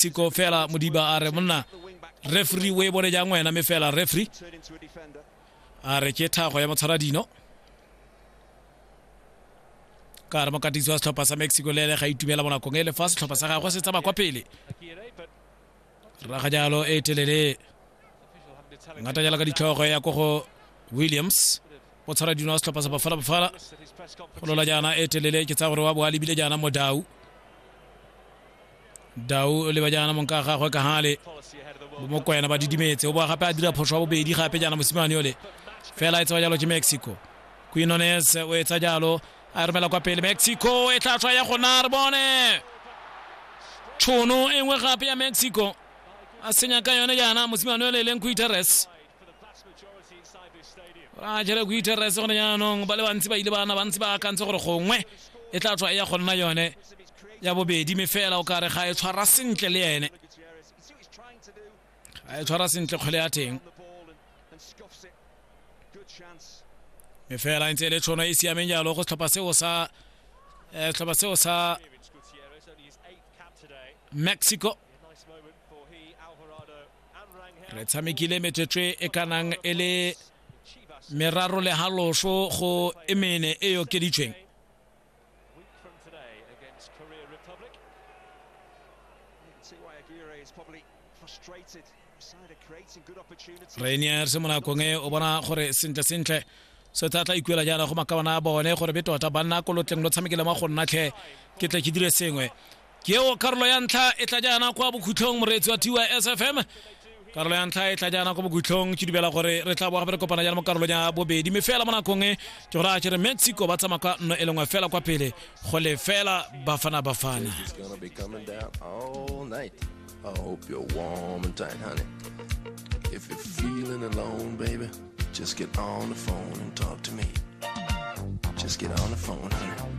mexico fela modiba a re monna refri o e bone jang wena me fela refri a re ke thago ya motshwara dino ka re mokatisi wa setlhopha sa mexico le ene ga itumela mo nakong e le fa setlhopha sa gagwe se tsaba kwa pele raga jalo e telele ngata jalo ka ditlhogo ya ko go williams o tshwara dino wa setlhopha sa bafala bafala go lola jaana e telele ke tsaya gore wa bo a lebile jaana modau dau o leba jaana mong ka gagwe ka gale mokwena ba didimetse o boa gape a dira phoso wa bobedi gape jaana mosimane yole fela e tsewa jalo ke mexico quinones o etsa jalo a e romela kwa pele mexico e tla tswa ya gona re bone tšhono e nngwe gape ya mexico a senya ka yone jaana mosimane yole e leng quiteres a jere quiteres gone jaanong ba le bantsi ba ile bana bantsi ba akantse gore gongwe e tla tswa e ya go nna yone ya bobedi me fela o kare ga e tshwara sentle le ene ga e tshwara sentle kgwele ya teng me fela ntse e le tshono e, e siameng jalo go setlhopha seo sa eh, setlhopha seo sa mexico re tshamekile metswetswe e kanang e le meraro le haloso go emene e okeditsweng Week from today against Korea Republic. You can see why Aguirre is probably frustrated. Side of creating good opportunities. rainier se monakong e o bona gore sentle sentle se tla tla ikuela jaana go makabana a bone gore be tota banna ko lotleng lo tshamekele mo go nnatlhe ke tle ke dire sengwe ke eo karolo ya ntlha e tla jaana kwa bokhutlhong moreetsi wa tys fm karolo ya ntlha e tla jaana kwa bokhutlhong ke dumela gore re tla boga re kopana jaana mo karolong ya bobedi mme fela mo nakong e ke gore a kere mexico ba tsamaya ka nno e lengwe fela kwa pele go le fela bafana bafana I hope you're warm and tight, honey. If you're feeling alone, baby, just get on the phone and talk to me. Just get on the phone, honey.